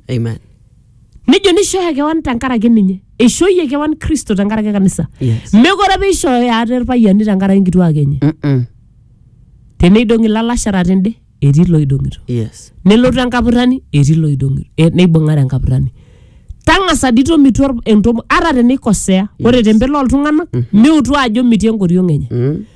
Amen. nejo nishooyo kewan tenkaraki ninye eishooyie kewan kristo tenkaraki kanisa Yes. mekore apa eishooyo ate irpayiani tenkaraki nkituak enye Mm-mm. teneidong'i ilalashera tende etii loidong'ito Yes. nelotu enkapurrani etii loidong'ito e, neibung'are enkapurrani tang'asa dii tomitu or- entomo ata teneikosea ore tempelo oltung'anak miutu ajo mitii enkoriong enye Mm.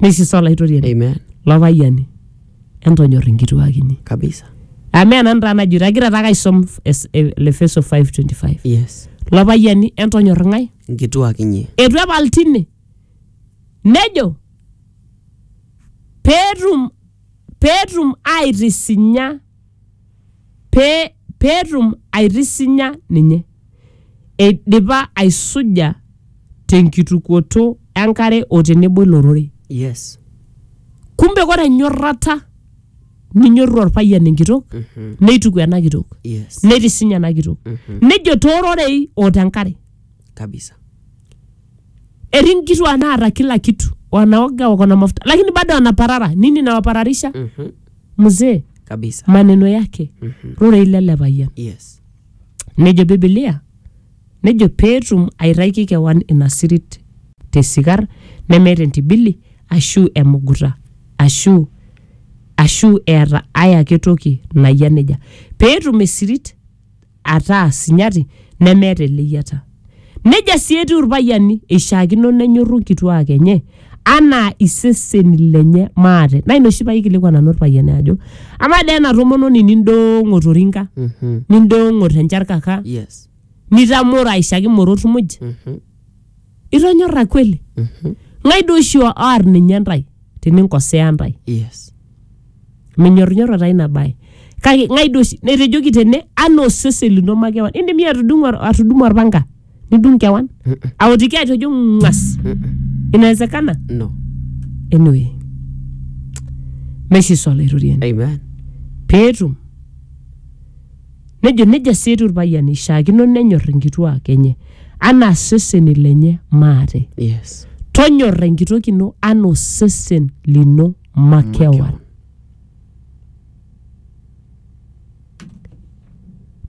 Neisisa Olaitoriani Amen. lo payiani entonyor inkituak inyi. Kabisa. Amu ena ntaa najito agira taake aisom es- e- le Efeso 5:25. Yes. Lo payiani entonyor ng'ae? Nkituak inyi. Eitu epal tine. Nejo peetum peetum aitisinya pee petum aitisinya ninye eidipa aisuja tenkitukuoto enkare o tenebo ilo rorei. Yes. Kumbe kore enyorrata ninyorru olpayian enkitok neituku ena kitok Yes. neitisinya ena kitok nejo toororei o tenkare. Kabisa. Etii nkituak naata kila kitu wanaoga wako na mafuta lakini bado anaparara nini inawapararisha? mzee kabisa maneno yake Mhm. rorei lele payian yes nejo bibilia nejo peetum aitaiki kewan ina sirit tesikar nemeeta entibili ashu emuguta ashu ashu eeta ae ake toki nayia nejia peetum esirit ataa sinyati nemeeta eleyiata. Nejia sii etiu irpayiani, eishiakino nenyorru nkituaak enye anaa iseseni lenye maate. Naa ina oshi paikilikuan nanu irpayiani ajo amaa dee ena tomononi nindoong'o to rinka, nindoong'o te ncharkaka, Yes. nitamoro aishaki morot muj, itonyorra kweli ng'ae duo oshi oar ninye ntae teninkosea ntae yes menyorrinyorro taa ina bae kake ng'ae duo oshi netejoki tene anaa osesen lino makewan indim iyie atudung'o atudumu orpanga nidung kewan aotiki atejo ng'as inawezekana no anyway meshiso olaitoriani amen peetum Nejo nejia sii etiu irpayiani eishiakino nenyor inkituaak enye anaa iseseni lenye maate. Yes. Tonyorra enkitok ino anaa osesen lino makewan.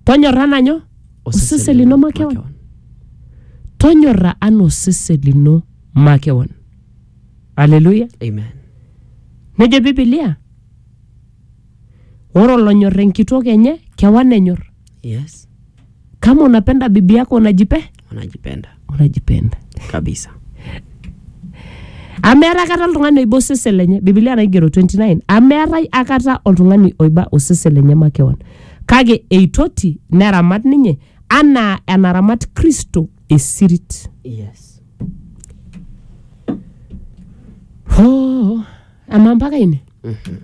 Tonyorra anaa nyoo? Osesen lino makewan. Tonyorra anaa osesen lino makewan. Haleluya. Amen. Nejo Biblia Ore olonyor enkitok enye kewan enyor. Yes. Kama unapenda bibi yako unajipe? Unajipenda. Unajipenda. Kabisa. Amu meetae akata oltung'ani oiba osesen lenye. Biblia naigero 29. Amu meetae akata oltung'ani oiba osesen lenye makewan. Kake eitoti neramat ninye anaa enaramat Kristo esirit. Yes. Hoo, amaa mpaka ine? Mhm.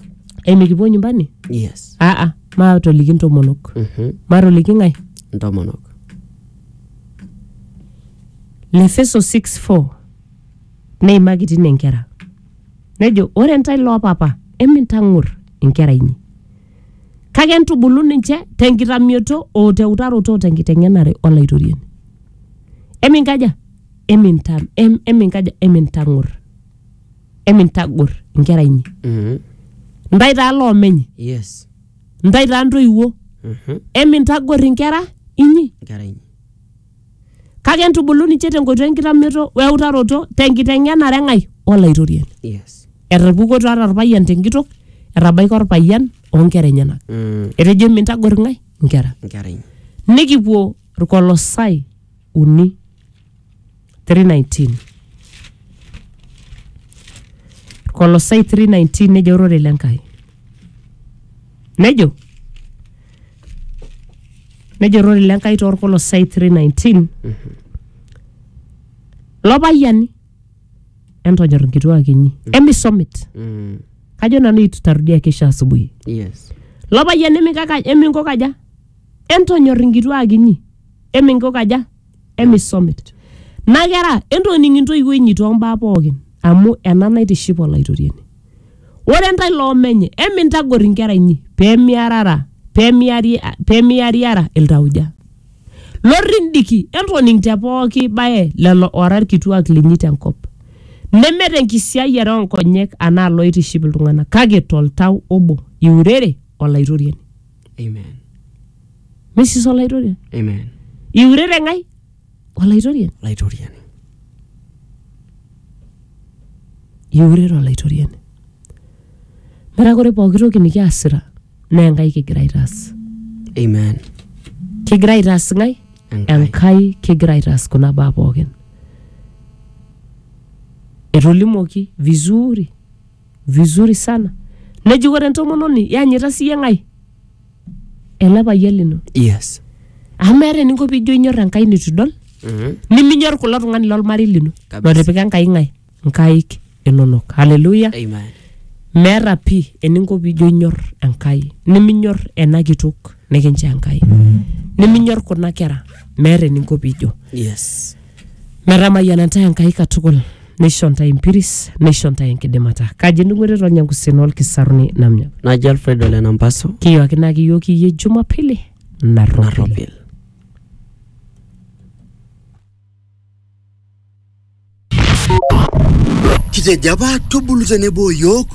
emikipuo nyumbani yes aa maatoliki ntomonok Mhm. matoliki ng'ae ntomonok lefeso 6:4 neimaki tine inkera nejo ore ntae loopapa emintang'or inkera inyi kake entubulu ninche tenkitamioto o teutaroto o tenkiteng'enare olaitoriani eminkaja emintam em, eminkaja emintang'or emintagor inkera inyi Mhm. ntae taa loomenye yes ntae taa ntoiwuo Mhm. emintagor inkera inyi nkera inyi kake entubulu ninche tenkoitoi enkitamioto weutaroto tenkiteng'enare eng'ai olaitoriani yes etarpukoto ata orpayian tenkitok etabaika orpayian onkera enyenak Mm, etejo emintagor ng'ai inkera nkera inyi nikipuo irkolosai uni 319 Kolosai 319 nejo ororei le Nkai nejo nejo ororei le Nkai toorkolosai 319 lopayiani entonyor inkituak inyi emisomit Mm. kajo nanu itu tarudia kesho asubuhi Yes. lopayian emikaka eminko kaja entonyor inkituak inyi eminkukaja emisomit na kera entoning intoiwuo inyi tombaa pookin amu ena naitiship olaitoriani ore ntae loomenye emintagor inkera inyi pemiarara pemiari pemiariara iltauja lorrindiki entoning te pooki bae lelo ora ilkituak linyi tenkop neme tenkisiayiare onkonyek anaa loitiship iltung'anak kake toltau obo iurere olaitoriani Amen. Mrs. Olaitoriani. Amen. Iurere ng'ai? Olaitoriani. Laitoriani. Iurere Olaitoriani. Metaa ore pooki toki nikiasita naa Enkai kigira aitaas. Amen. Kigira aitaas ng'ai? Enkai. Enkai kigira aitaas kuna baa pookin. Etolimuoki vizuri vizuri sana. Neji ore entomononi yanyita siyie ng'ai? ele payian lino yes amu meeta eninko piijo inyor enkai nitu idol Mhm. niminyor kulo tung'ani lolmarei lino Kabisa. lotipika enkai ng'ae nkaik inonok haleluya amen meeta pii eninko piijo inyor enkai niminyor ena kitok nikinchoo enkai niminyor kuna kera meeta eninko piijo yes metamayiana ntae Enkai katukul neisho ntae empiris neisho ntae enkidimata kaji endung'oto etonya nkusien olkisaruni namnya naji alfred ole nampaso kiyooki naa kiyooki iyie jumapili narropil narropil Kitejo apa tubulu tenebo o yiok